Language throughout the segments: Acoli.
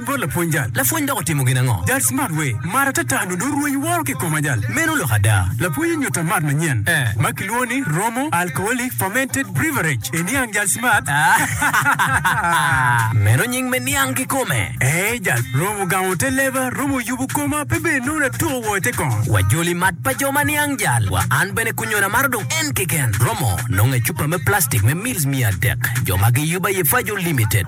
bot lapwony jal. Lapwony dok otimo gin ango? Jal smart we mar atata nyo dong rweny woro ki kom ajal. Meno lok ada. Lapwony onyuta mat manyen ma kilwongo ni Romo Alcoholic Fermented Breverage e niang jal smart. Meno nying me niang kikome. Ee jal romo gamo te leba, romo yubo koma pe bed nongo natuko woko i te kong. Wa joli mat pa jo ma niang jal wa an bene kunyona amaro dong en keken. Romo nongo i cupa me plastic me mils miya adek jo ma giyubo aye Fajo Limited.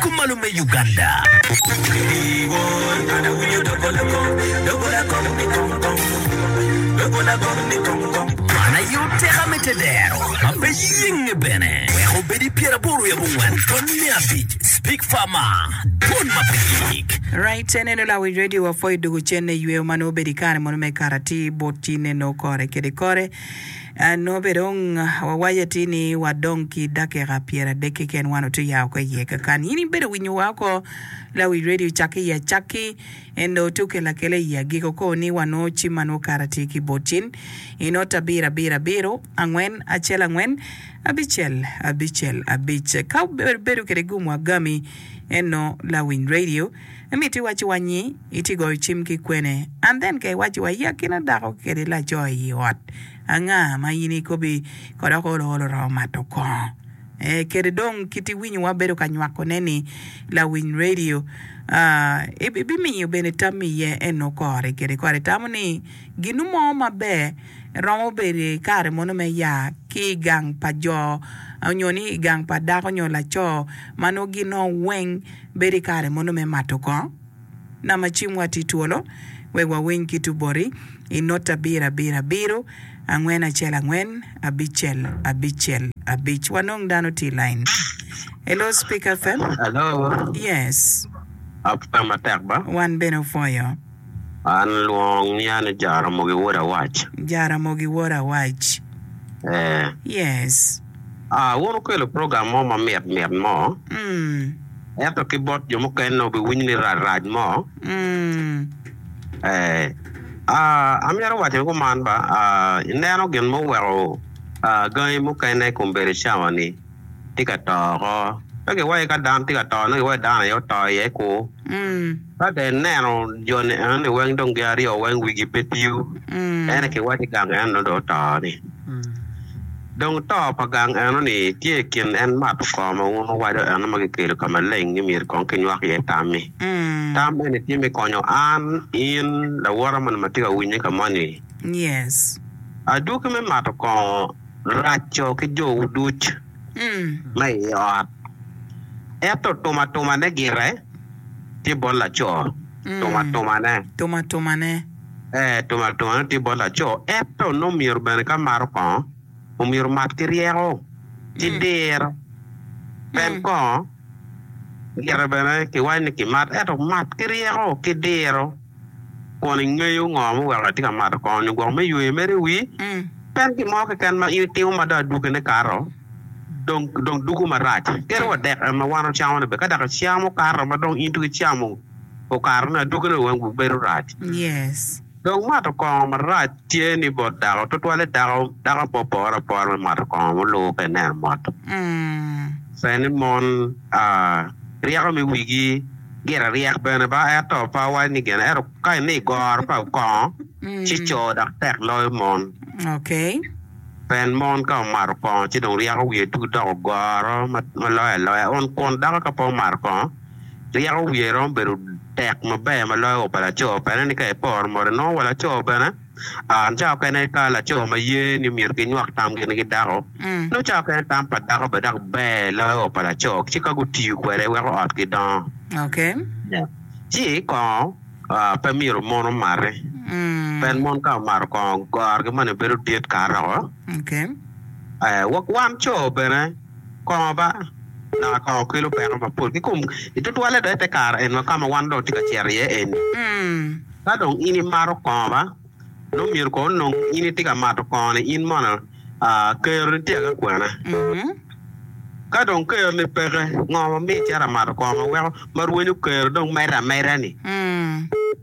Kum malo me Uganda. Man aye oteka me te dero ma pe yenge bene weko obed i pyer aboro wiye abongwen tony me abic Speak Farmer Dwon ma pe yik. Right eneno lawic radio wa Foy Dogocen ne yweyo ma nongo obedo ikare mono me karati bot ci neno kore kede kore. Nongo bene dong wawaco atir ni wadong ki dakika pyeradek keken wan otye ya oko iye. Kakan in ibedo winyo wa oko Lawi Radio cakke i acakki, en dong otye okelo akela i agiko oko ni wanongo cim ma nongo kato atir ki bot cen i not abiro abiro abiro angwen acel angwen abicel abicel abic. Ka wabedo kwede gum wa gami, en nongo Lawiny Radio. Imito iwacci wa nyi itye goyo cim ki kwene? And then ka iwacci wa iakina dako kede laco i yi ot anga ma in ikobi kod oko olo olo oromo mato kongo eh kede dong kit iwinyo wa bedo ka nywako ne ni lawiny radio ah ibimiyo bene tammi iye eno kore kede kore itamo ni ginu mo maber. Eromo bedo i kare mono me ya ki i gang pa jo nyo ni i gang pa dako nyo laco ma nongo gin o weng bedo i kare mono me mato kong? Nama cimwa tye twolo wek wawiny kit oboti i not abirabirabiro angwen acel angwen abicel abicel abic. Wanong dano tye i lain. Hello Speaker FM. Hello. Yes. Apwoyo matek ba. Wan bene opwoyo. An lwong ni an i Jaramogi wod Awac. Jaramogi wod Awac. Ee. Yes. Aa, wun wukelo program mo ma mit mit mo. Mm. Ento ki bot jo mukene wubiwinyo ni rac rac mo. Mm. Ee. Aa, amyero waco ni kuman ba, aa, ineno gin ma oweko, aa, gangi mukene i kom bedo cawa ni. tye ka to oko. Pe giwaco ka dano tye ka to, nongo giwaco dano aye oto iye ku. Ka dong ineno joni enoni weng dong gin aryo weng wigi pe tiyo, ene kiwaco ni gang eno dong oto-ni. Dong to pa gang eno-ni tye i kin en mato koo ma wun wuwaco eno ma kikelo ka maleng ni myero kong kinywak iye tam-mi. Tam eni tye me konyo an, in, lawote moni ma tye ka winye ka moni. Adwogi me mato koo. raco ki jowu duc ma i ot. Ento tumatumane gire tye bot laco, tumatumane. Tumatumane. Ee, tumatumane tye bot laco. Ento nongo myero bene ka mato kongo, omyero mat ki ryeko, ki diro. Pien kongo gire bene kiwaco ni kimat, ento mat ki ryeko, ki diro. Kun ingeyo ngo ma oweko atye ka mato kongo ni gwok me yweyo mere wi pien gin mo keken ma in itimo ma dong adwogine kato dong dong dugo marac. Kit wa dek en ma wan wacamo ni bed ka dok aciya mo kato ma dong in dong icamo okato ni adwogine wi wan gubedo rac. Dong mato kongo marac. Tye ni bot dako, tutwalle dako, dako apo pore apora me mato kongo mulubo ka ineno mot. Pien ni mon ryeko me wigi gire ryek bene ba, ento pe awaco ni gene, ento ka ine i goro pa kongo, ci co dok tek loyo mon. Pien mon ka omato kongo ci dong ryeko wiye tut dok ogoro ma loyo aloya, on kun dako ka pe omato kongo, Ryeko wiye romo bedo tek maber ma loyo wa pa laco. Pene ni ka iporo mot, inongo wa laco bene aa cawa mukene ka laco ma ye ni myero ginywak tam gin ki dako, nongo cawa mukene tam pa dako bene dok ber loyo wa pa laco ci ka gutiyo kwede weko ot gidongo. Ci kongo pe myero mon omate, pien mon ka omato kongo, gorgi moni bedo dit kato woko. Wan co bene. Kongo ba, dok kongo kelo peko mapol kikom. I tutwalle dong i te kare eni ka ma wan dong watye ka cito iye eni, ka dong in imato kongo ba, nongo myero kono onong in itye ka mato kongo-ni in mono keroni tye agi kwene. Ka dong keroni peke, ngo ma miyo icito ka mato kongo ma weko ma rwenyo kero dong medde ameda-ni?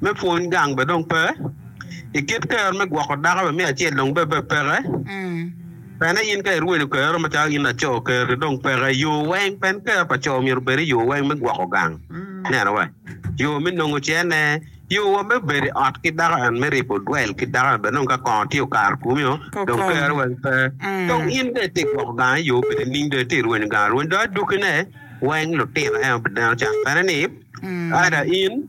Me pwony gang bene dong pe. I kit kero me gwoko dako bene me acel dong bene pe peke. Pene in ka irwelo kero macalo in laco kero-ri dong peke. Yo weng pen kero pa co myero obed i yo weng me gwoko gang. Neno wa, yo me nongo cene, yo wa me bedo i ot ki dako and me ribo dwel ki dako bene dong ka kongo tye okato kumi-o dong kero weng pe. Dong in dong itye ka gwoko gang i yo bedo nining dong itye ka rwenyo gang arweny dong adwogine weng lutino en obineno can pene ni ada in.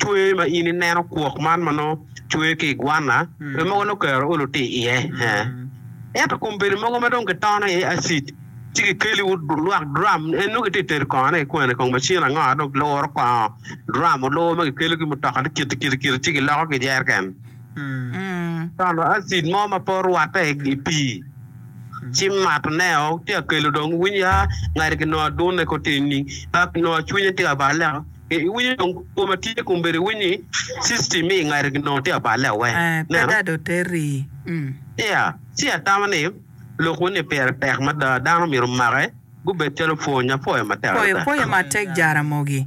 Cwer ma in ineno kwok man ma nongo cwer ki i gwanna pe mogo nongo kero olo tye iye. Ento kombeddi mogo ma dong kitono iye acid ci kikeli lwak dram en nongo kitye ka tedo kongone ki kwene kong macin ango ma dong kiluro kongo dram olur ma kikelo ki mutoka tye kiti kiti kiti ci kiloko ki jereken tono acid mo ma pe orwatte i pii ci mato ne o tye ka kelo dong winy a ngati ki nongo adunne kong tye nining a nongo cwinye tye ka bale leko Ee, iwinyo dong koma tye kombeddi iwiny ni system me ingati ginongo tye aballe awe. Pe da do terri mm. Ea, ci atamo ni lok weny ni pire tek mada dano myero make gubed calo pwony. Apwoyo matek adada. Pwoyo matek Jaramogi.